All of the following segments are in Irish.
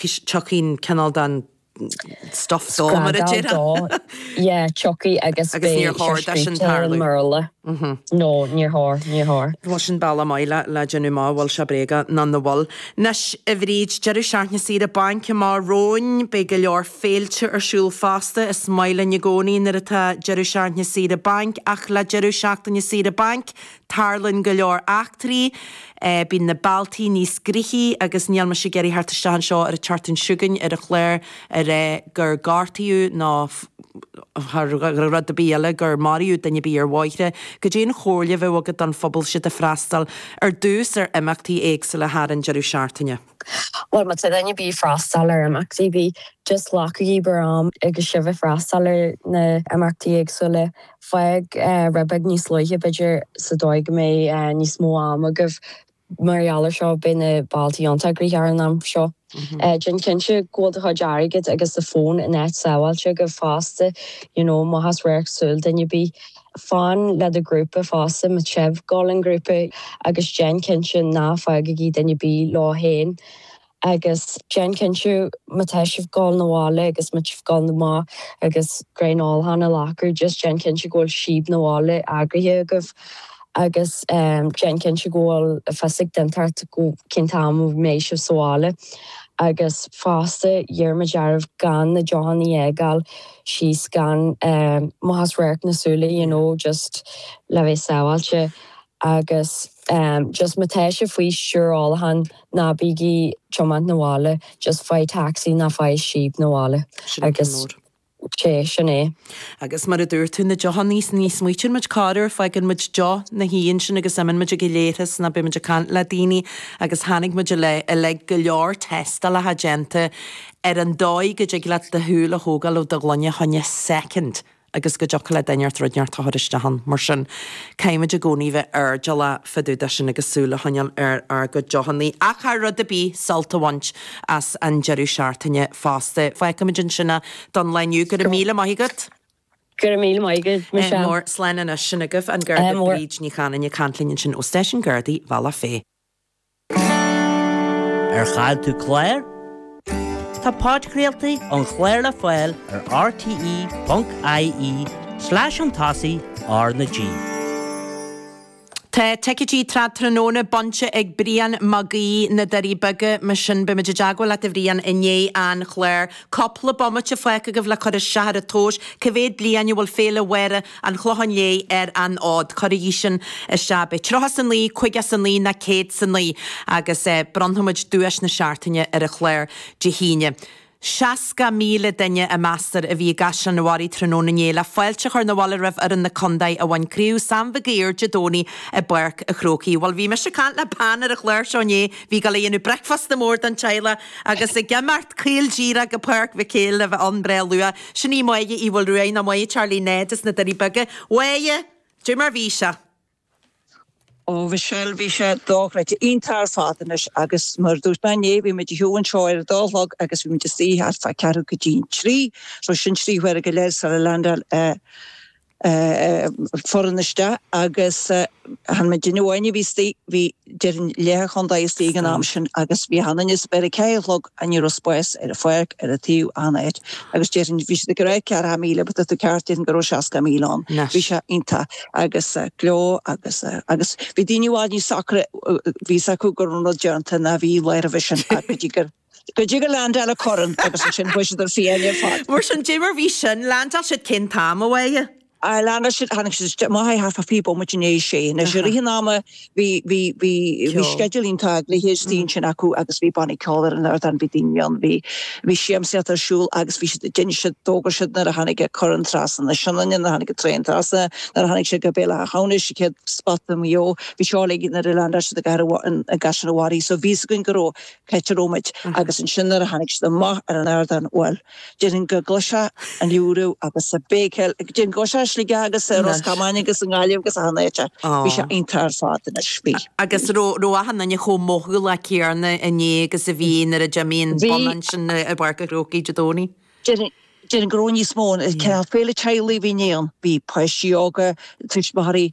Tiocfaidh cineál den stuff dó, mar a déarfá. Scragall dó, yeah, tiocfaidh agus beidh sé scríte. Agus níor chóir do sin tarlú. Mar a le. No, níor chóir, níor chóir. Bhuel sin bealach maith le déanamh amach an bhfuil sé bréagach nó nach bhfuil. Anois, a Bhríd, deireadh seachtaine saoire bainc amach romhainn. Beidh go leor féilte ar siúl fosta. Is maith linn i gcónaí nuair atá deireadh seachtaine saoire bainc ach le deireadh seachtaine saoire bainc, Tarlaíonn go leor eachtraí, bíonn na bealtaí níos gnoithí agus níl mise ag iarraidh theacht isteach anseo ar an tseachtain seo chugainn ar an chlár a ráit gur gortaíodh nó thar rud ar bith eile gur maraíodh duine ar bith ar ár mbóithre. Cad é an chomhairle a bheadh agat don phobal is iad ag freastal ar dtús ar imeachtaí éagsúla thar an deireadh seachtaine? Bhuel, má tá duine ar bith ag freastal ar imeachtaí ar bith, just glacaigí bhur am agus sibh ag freastal ar na himeachtaí éagsúla. Fág rud beag níos luaithe, b'fhéidir, sa dóigh go mbeidh níos mó am agaibh. Mar gheall ar seo, beidh na bealtaí iontach gnoitheach thar an am seo. Déan cinnte go bhfuil do chuid airgid agus do fón in áit sábháilte agaibh fosta, you know, amach as radharc súl duine ar bith. Fan le do ghrúpa fosta, má tá sibh ag dul i ngrúpa agus déan cinnte ná fágaigí duine ar bith leo féin. Agus déan cinnte má tá sibh ag dul na bhaile agus má tá sibh ag dul amach agus braon ólacháin a ghlacadh just déan cinnte go bhfuil síob na bhaile eagraithe agaibh agus déan cinnte go bhfuil fios ag duine inteacht cén t-am a mbeidh sibh sa bhaile. Agus fosta iarraimid oraibh gan na deochanna a fhágáil síos gan amach as radharc na súile you know just le bheith sábháilte agus just má tá sibh faoi thionchar ólacháin ná bígí ag tiomáint na bhaile just faigh taxi nó faigh síob na bhaile agus sé sin é. Agus mar a dúirt tú na deochannaí ní smaoitíonn muid corruair fágann muid deoch ina shuí ansin agus imeann muid ag an leithreas nó beidh muid ag caint le daoine agus chonaic muid i i like go leor tástálacha déanta ar an dóigh go dtig leat do shúil a thógáil ó do ghloine fá choinne soicind agus go dtiocfadh le duine inteacht rud inteacht a chur isteach ann. Mar sin, caithfimid i gcónaí bheith airdeallach fá dtaobh de sin agus súil a choinneáil ar ár gcuid deochannaí, ach thar rud ar bith, sult a bhaint as an deireadh seachtaine fosta. Fágfaimid ansin é don lá inniu. Go raibh míle maith agat! Go raibh míle maith agat, Michelle. Mór, Slán anois. Sin agaibh an Garda Bríd Ní Chanainn ag caint linn ansin ó Stáisiún Gardaí Bhealach Féich. Ar chaill tú clár? Tá podchraoltaí an chláir le fáil ar rte.ie slash chun tosaigh R na G. Tá ticéidí Trad Tráthnóna bainte ag Brian Mag Aoidh, Na Doirí Beaga, mar sin beidh muid i dteagmháil leat a Bhrian i ndiaidh an chláir. Cúpla bomaite fágtha agaibh le cur isteach ar an tomhas cé mhéad bliain a bhfuil Féile Mháire an Chlocháin Léith ar an fhód. Cuirigí sin isteach, beidh. Tríocha 's a naoi, caoga 's a naoi, ná céad 's a naoi, agus bronnfaimid duais na seachtaine ar an chlár Dé hAoine. Seasca míle duine a meastar a bhí i gCaisleán an Bharraigh tráthnóna inné le fáilte a chur na bhaile roimh fhoireann na condae a bhain Craobh Sam Mhig Uidhir Dé Domhnaigh i bPáirc a' Chrócaigh. Bhuel, bhí mise ag caint le bean ar an chlár seo inné, bhí ag dul a dhéanamh bricfeasta mór don teaghlach agus ag imeacht caol díreach go Páirc Mhic Éil le bheith ann breá luath. Sin í Máire Uí Mhaolruaidh, nó Máire Charlie Ned as na Doirí Beaga. A Mháire, cad é mar bhí sé? Ó Mhichelle, bhí sé dochreidte, iontach ar fad anois agus mar a dúirt mé inné, bhí muid ag siúl anseo ar a dó a chlog agus bhí muid istigh thart fá ceathrú go dtí an trí, so sin trí huaire go leith sula leaindeáil an. foireann isteach agus chan muidinne amháin a bhí istigh, bhí déarfainn leath an chontae istigh ag an am sin agus bhí chan, anois b'fhéidir a ceathair a chlog and ní raibh spás ar an pháirc, ar an taobh achan áit agus déarfainn bhí siad ag rá ceathracha míle but tá tú ceart déarfainn go raibh seasca míle ann, bhí sé iontach agus gleo agus, agus bhí daoine i bhfad níos socra bhí fhios acu go raibh an rud déanta ná bhí lá roimhe sin ach go dtí gur. Go dtí gur leaindeáil an corn agus ansin bhí siad fiáin ar fad. Mar sin cad é mar bhí sin, leaindeáil siad cén t-am a Mháire. Ar leaindeáil siad, tháinig siad isteach, a Mhichelle, thart fá fiche bomaite i ndiaidh a sé, anois i rith an ama bhí, bhí, bhí, bhí sceideal iontach eagraithe ansin acu agus bhí bannaí ceoil ar an ardán, bhí daoine ann, bhí, bhí siamsaíocht ar siúl agus bhí siad, d'inis siad, d'fhógair siad nuair a tháinig an corn trasna na Sionainne, nuair a tháinig an traein trasna, nuair a tháinig sé go Béal Átha hAmhnais, an chéad spota i Maigh Eo, bhí seo uilig nuair a leaindeáil siad i gcathair, i gCaisleán an Bharraigh, so bhí fhios againn go raibh. cá háit a raibh muid, agus ansin nuair a tháinig siad amach ar an ardán, bhuel, déarfainn go gcloisfeá an liúradh agus an béicíl, déarfainn go gcloisfeá é i Sligeach agus i Ros Comáin agus i nGaillimh agus achan áit, bhí sé iontach ar fad anois, bhí. Agus an raibh achan duine chomh mothálach céanna inné agus a bhí nuair a d'imigh an bonn ansin i bPáirc an Chrócaigh Dé Domhnaigh? Déarfainn, déarfainn go raibh níos mó, cineál féile teaghlaigh a bhí inné ann, bhí páistí óga, tuismitheoirí,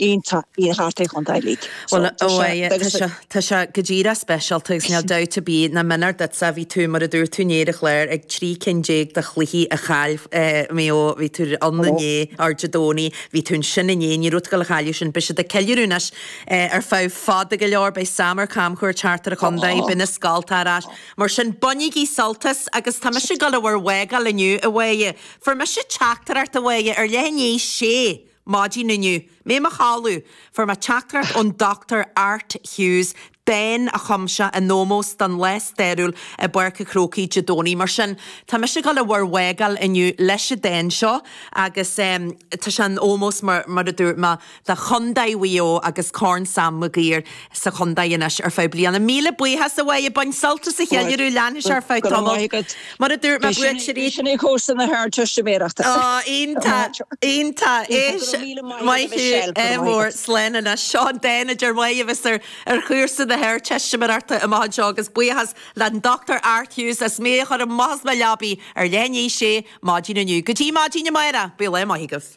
iontach í thart ar an chontae uilig. Bhuel, a Mháire, tá sé, tá sé go díreach speisialta agus níl dabht ar bith ná méanar duitse a bhí tú, mar a dúirt tú inné ar an chlár, ag trí cinn déag de chluichí a chaill Maigh Eo, bhí tú ann inné, or Dé Domhnaigh, bhí tú ansin inné, ní raibh tú ag dul a chailleadh sin, beidh siad ag ceiliúradh anois ar feadh fada go leor, beidh Sam ar camchuairt thart ar an chontae, beidh na scoltacha ar ais, mar sin bainigí sult as agus tá mise ag dul a bhur bhfágáil inniu, a Mháire, fuair mise teachtaireacht, a Mháire, ar leath i ndiaidh a sé. Maidin inniu, mé i mo chodladh, fuair mé teachtaireacht ón Dochtúir Art Hughes, dán a chum sé in ómós don lá stairiúil i bPáirc a' Chrócaigh Dé Domhnaigh. Mar sin, tá mise ag dul a bhur bhfágáil inniu leis an dán seo agus tá sé in ómós, mar a dúirt mé, do Chondae Mhaigh Eo agus Corn Sam Maguire. sa chontae anois ar feadh bliana. Míle buíochas a Mhaedhbh, bain sult as an cheiliúradh, leanfaidh sé ar feadh tamaill. Mar a dúirt mé, buaiteoirí. Oh, iontach, iontach. Éist, maith thú, ádh mór, slán anois. Seo an dán a deir mé a bheas ar chúrsa na hArdteistiméireachta amach anseo agus buíochas le'n Dr Art Hughes as mé a chur amach as mo leabaidh ar leath i ndiaidh a sé maidín inniu. Go dtí maidín amáireach, míle maith agaibh.